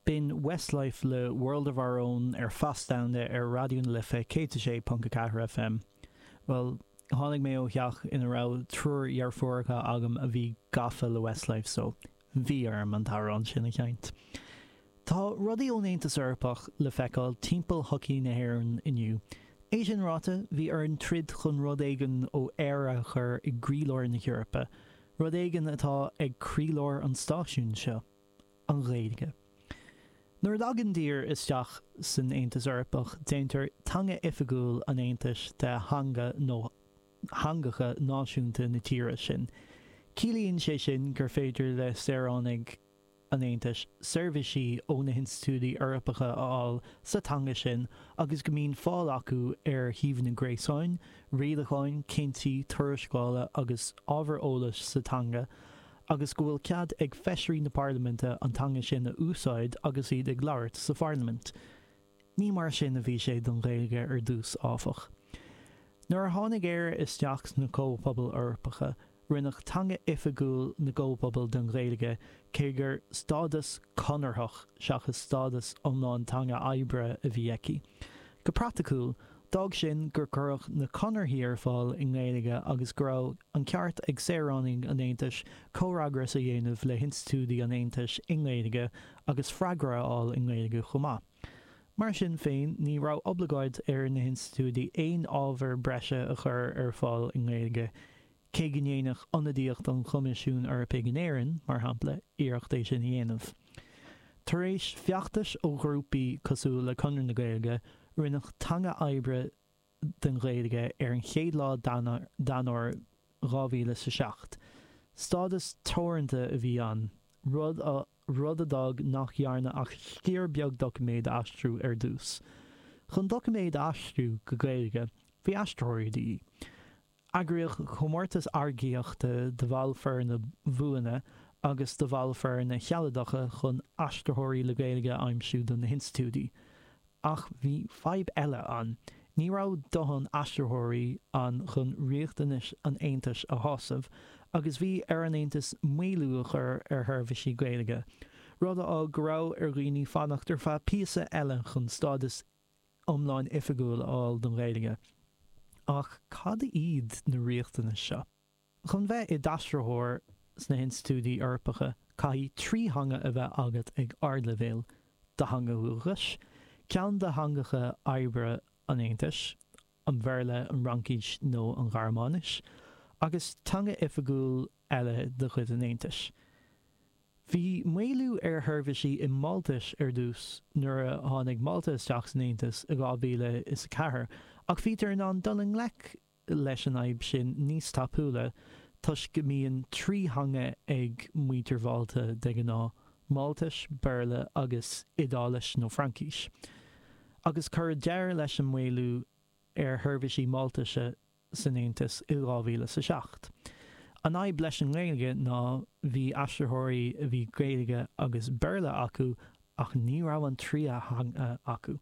B'in Westlife le World of Our Own ar Feas Domhanda ar Raidió na Life 106.4 FM. Bhuel, tháinig mé ó theach ina raibh triúr dheirfiúracha agam a bhí gafa le Westlife so, bhí orm an t-amhrán sin a sheinnt. Tá rudaí ón Aontas Eorpach le feiceáil timpeall shochaí na hÉireann inniu. É sin ráite, bhí orainn troid chun rud éigin ó Éire a chur i gcroílár na hEorpa. Rud éigin atá ag croílár an stáisiúin seo, an Ghaeilge. Nuair a thagann tír isteach san Aontas Eorpach déantar teanga oifigiúil an Aontais de theanga nó theangacha náisiúnta na tíre sin. Ciallaíonn sé sin gur féidir le saoránaigh an Aontais seirbhisí ó na hinstitiúidí Eorpacha a fháil sa teanga sin agus go mbíonn fáil acu ar shuíomhanna gréasáin, rialacháin, cinntí, tuarascála agus ábhar eolais sa teanga agus go bhfuil cead ag Feisirí na Parlaiminte an teanga sin a úsáid agus iad ag labhairt sa Pharlaimint. Ní mar sin a bhí sé don Ghaeilge ar dtús, áfach. Nuair a tháinig Éire isteach sna Comhphobail Eorpacha, rinneadh teanga oifigiúil na gComhphobal den Ghaeilge, cé gur stádas conarthach seachas stádas iomlán teanga oibre a bhí aici. Go praiticiúil, D'fhág sin gur cuireadh na Conarthaí ar fáil i nGaeilge agus go raibh an ceart ag saoránaigh an Aontais comhfhreagras a dhéanamh le hinstitiúidí an Aontais i nGaeilge agus freagra a fháil i nGaeilge chomh maith. Mar sin féin, ní raibh oibleagáid ar na hinstitiúidí aon ábhar breise a chur ar fáil i nGaeilge Cé go ndéanadh ionadaíocht an Choimisiúin Eorpaigh in Éirinn, mar shampla, iarracht é sin a dhéanamh. Tar éis feachtais ó ghrúpaí cosúil le Conradh na Gaeilge, rinneadh teanga oibre den Ghaeilge ar an chéad lá d'Eanáir 2000 sa seacht. Stádas teoranta a bhí ann, rud a rud a d'fhág nach ndearnadh ach sciar beag doiciméad a aistriú ar dtús. Chun doiciméad a aistriú go Gaeilge, bhí aistritheoirí de dhíth. Eagraíodh comórtas earcaíochta do bhaill foirne bhuana agus do bhaill foirne shealadacha chun aistritheoirí le Gaeilge a aimsiú do na hinstitiúidí. Ach bhí fadhb eile ann, ní raibh dóthain aistritheoirí ann chun riachtanais an Aontais a shásamh agus bhí ar an Aontas maolú a chur ar sheirbhísí Gaeilge, rud a d'fhág go raibh ar dhaoine fanacht ar feadh píosa eile chun stádas iomlán oifigiúil a fháil don Ghaeilge. Ach cad iad na riachtanais seo? Chun bheith i d'aistritheoir sna hinstitiúidí Eorpacha caithfidh trí theanga a bheith agat ag ardleibhéal, do theanga dhúchais, ceann de theangacha oibre an Aontais, an Bhéarla, an Fhraincis nó an Ghearmáinis, agus teanga oifigiúil eile de chuid an Aontais. Bhí maolú ar a sheirbhísí i Máltais ar dtús nuair a tháinig Málta isteach san Aontas i 2004 ach bhítear in ann dul i ngleic leis an fhadhb sin níos tapúla toisc go mbíonn trí theanga ag muintir Mhálta de ghnáth, Máltais, Béarla agus Iodáilis nó Fraincis. Agus cuireadh deireadh leis an maolú ar sheirbhísí Máltaise san Aontas i 2007. An fhadhb leis an nGaeilge ná bhí aistritheoirí a bhí Gaeilge agus Béarla acu ach ní raibh an tríú teanga acu.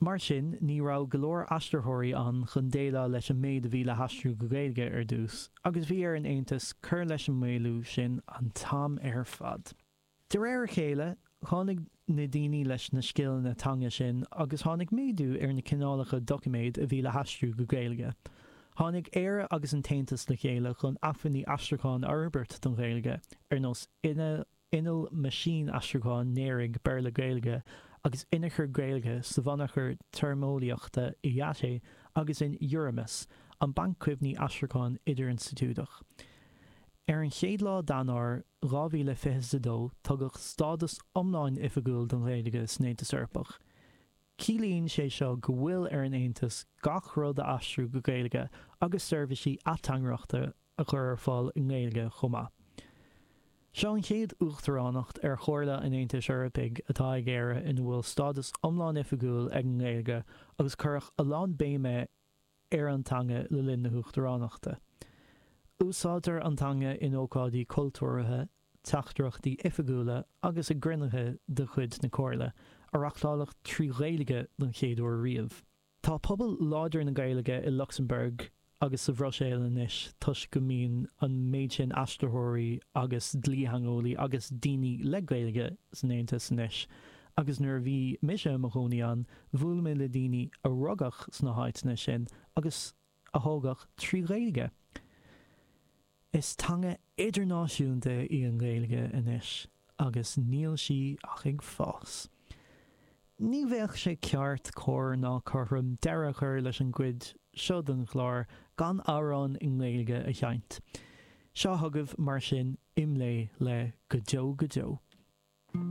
Mar sin ní raibh go leor aistritheoirí ann chun déileáil leis an méid a bhí le haistriú go Gaeilge ar dtús agus bhí ar an Aontas cur leis an maolú sin an t-am ar fad. De réir a chéile, tháinig na daoine leis na scileanna teanga sin agus tháinig méadú ar na cineálacha doiciméad a bhí le haistriú go Gaeilge. Tháinig Éire agus an tAontas le chéile chun acmhainní aistriúcháin a fhorbairt don Ghaeilge, ar nós inneall meaisínaistriúcháin néaraigh Béarla-Gaeilge agus inneachar Gaeilge sa bhunachar téarmeolaíochta IATE agus in Euramis, an banc cuimhní aistriúcháin idirinstitiúideach. Ar an chéad lá d'Eanáir 2022 tugadh stádas iomlán oifigiúil don Ghaeilge san Aontas Eorpach. Ciallaíonn sé seo go bhfuil ar an Aontas gach rud a aistriú go Gaeilge agus seirbhísí ateangaireachta a chur ar fáil i nGaeilge chomh maith. Seo an chéad Uachtaránacht ar Chomhairle an Aontais Eorpaigh atá ag Éire ina bhfuil stádas iomlán oifigiúil ag an nGaeilge agus cuireadh a lán béime ar an teanga le linn na hUachtaránachta. Úsáidtear an teanga in ócáidí cultúrtha, teachtaireachtaí oifigiúla agus i gcruinnithe de chuid na Comhairle, a reachtáladh trí Ghaeilge don chéad uair riamh. Tá pobal láidir na Gaeilge i Lucsamburg agus sa Bhruiséil anois toisc go mbíonn an méid sin aistritheoirí agus dlítheangeolaí agus daoine le Gaeilge san Aontas anois Agus nuair a bhí mise i mo chónaí ann, bhuail mé le daoine a rugadh sna háiteanna sin agus a thógadh trí Ghaeilge. Is teanga idirnáisiúnta í an Ghaeilge anois agus níl sí ach ag fás. Ní bheadh sé ceart, cóir ná cothrom deireadh a chur leis an gcuid seo den chlár gan amhrán i nGaeilge a sheinnt. Seo chugaibh, mar sin, Imlé le Go Deo Go Deo.